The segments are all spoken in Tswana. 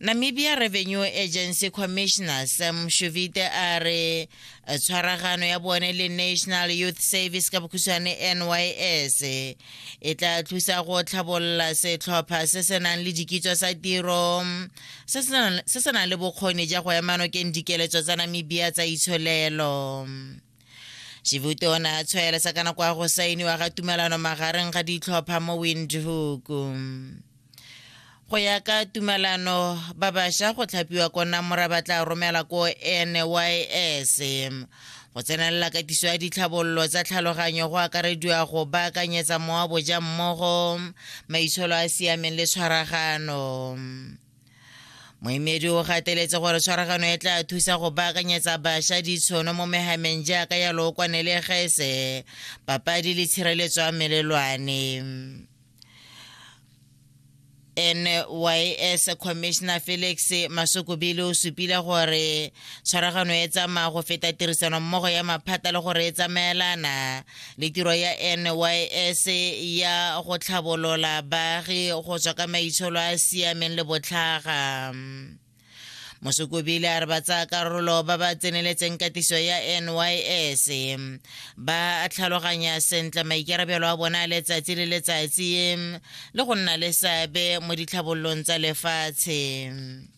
Namibia Revenue Agency Commissioner Sam Shuvite a re eh, tshwaragano ya bone le National Youth Service ka bokhutshwane NYS e tla thusa go tlhabolola setlhopha se se nang le dikitso sa tiro se se nang le bokgoni ja go emanokeng dikeletso tsa Namibia tsa itsholelo. Shivuti o ne a tshwaelesa ka nako ya go sainiwa ga tumelano magareng ga ditlhopha mo Windhoek. Go ya ka tumelano, ba bašwa go tlhapiwa ko Namora ba tla romela ko NYS. Go tsenelela katiso ya ditlhabololo tsa tlhaloganyo go akarediwa go baakanyetsa moaboja mmogo maitsholo a siameng le tshwaragano. moemedi o gateletse gore tshwaragano e tla thusa go baakanyetsa bašwa ditshono mo megameng jaaka ya lookwane le gese papadi le tshireletso ya melelwane nys commissioner felix masokobile o supile gore tshwaragano e tsamaya go feta tirisano mmogo ya maphata le gore e tsamaelana le tiro ya nys ya go tlhabolola baagi go tswa ka maitsholo a a siameng le botlhaga mosukubile a re ba tsaya karolo ba ba tseneletseng katiso ya nys ba tlhaloganya sentle maikarabelo a bona a letsatsi le letsatsi le go nna le seabe mo ditlhabololong tsa lefatshe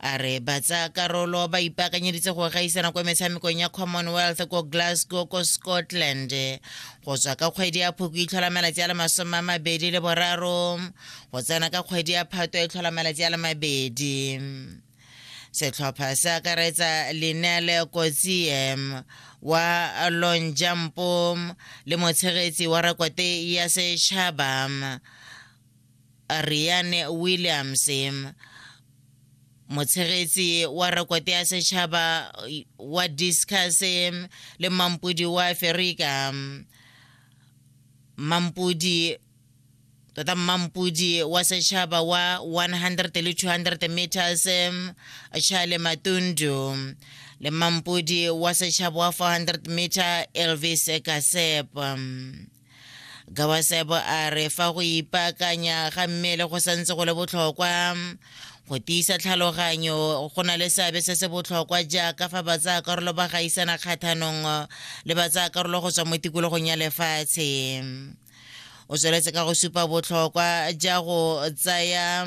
a re ba tsaya karolo ba ipaakanyeditse go gaisana kwa metshamekong ya commonwealth ko glasgow ko scotland go tswa ka kgwedi ya phoko e tlhola malatsi a le masome a mabedi le boraro go tsena ka kgwedi ya phato e tlhola malatsi a le mabedi setlhopha se akaretsa linele kotsiem wa long jumpo le motshegetsi wa rekote ya setšhaba Riane Williams, motshegetsi wa rekote ya setšhaba wa discus le mampodi wa aferika mampodi tota mmampodi wa setšhaba wa 100 le 200 meters charle matundu le mmampodi wa setšhaba wa 400 meter elvis kasep gawasebo a re fa go ipaakanya ga mmele go santse go le botlhokwa go tiisa tlhaloganyo go na le seabe se se botlhokwa jaaka fa batsayakarolo ba gaisana kgathanong le batsayakarolo go tswa mo tikologong ya lefatshe o tsweletse ka go supa botlhokwa ja go tsaya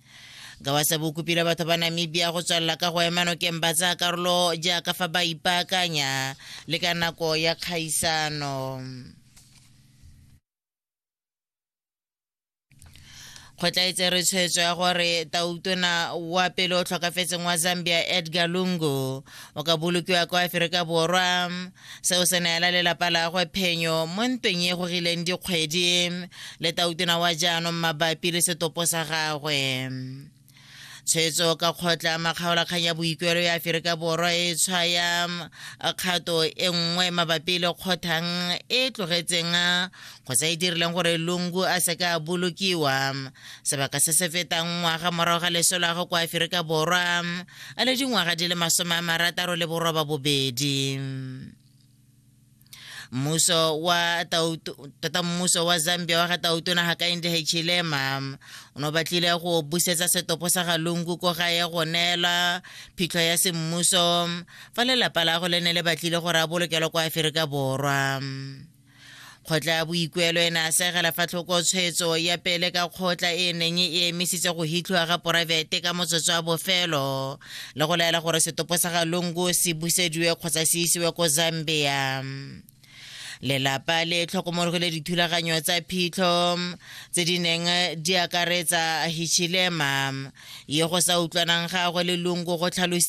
ka wa sebe o kopile batho ba namibia go tswelela ka go ema nokeng ba tsaya karolo jaaka fa ba ipaakanya le ka nako ya kgaisano kgotlaetse re tshwetso ya gore tautona wa pele o tlhokafetseng wa zambia edgar lungu o ka bolokiwa kwa aferika borwa seo se neela lelapa lagwe phenyo mo ntweng e gorileng dikgwedi le tautona wa jaanong mabapi le setopo sa gagwe tshwetso ka kgotla makgaolakgang ya boikuelo ya aferika borwa e tshwaya kgato e nngwe mabapi le kgothang e tlogetseng kgotsa e dirileng gore lungu a seke a bolokiwa sebaka se se fetang ngwaga morago ga leso la go kwa aferika borwa a le dingwaga di le masome a marataro le boroba bobedi mmuso wa tota mmuso wa zambia wa ga tautona ga ka inde hechilema o ne o batlile go busetsa setopo sa ga lungu ko ga ye go neela phitlho ya semmuso fa lelapa la go le ne le batlile gore a bolokelwa kwa aferika borwa kgotla ya boikuelo e ne a segela fa tlhoko tshwetso ya pele ka kgotla e neng e emisitse go hitlhiwa ga poraefete ka motsotso wa bofelo le go laela gore setopo sa ga lungu se busediwe kgotsa se isiwe ko zambia lelapa le tlhokomologile dithulaganyo tsa phitlho tse di neng di akaretsa hichilema yo go sa utlwanang gagwe le lungu go tlhalositse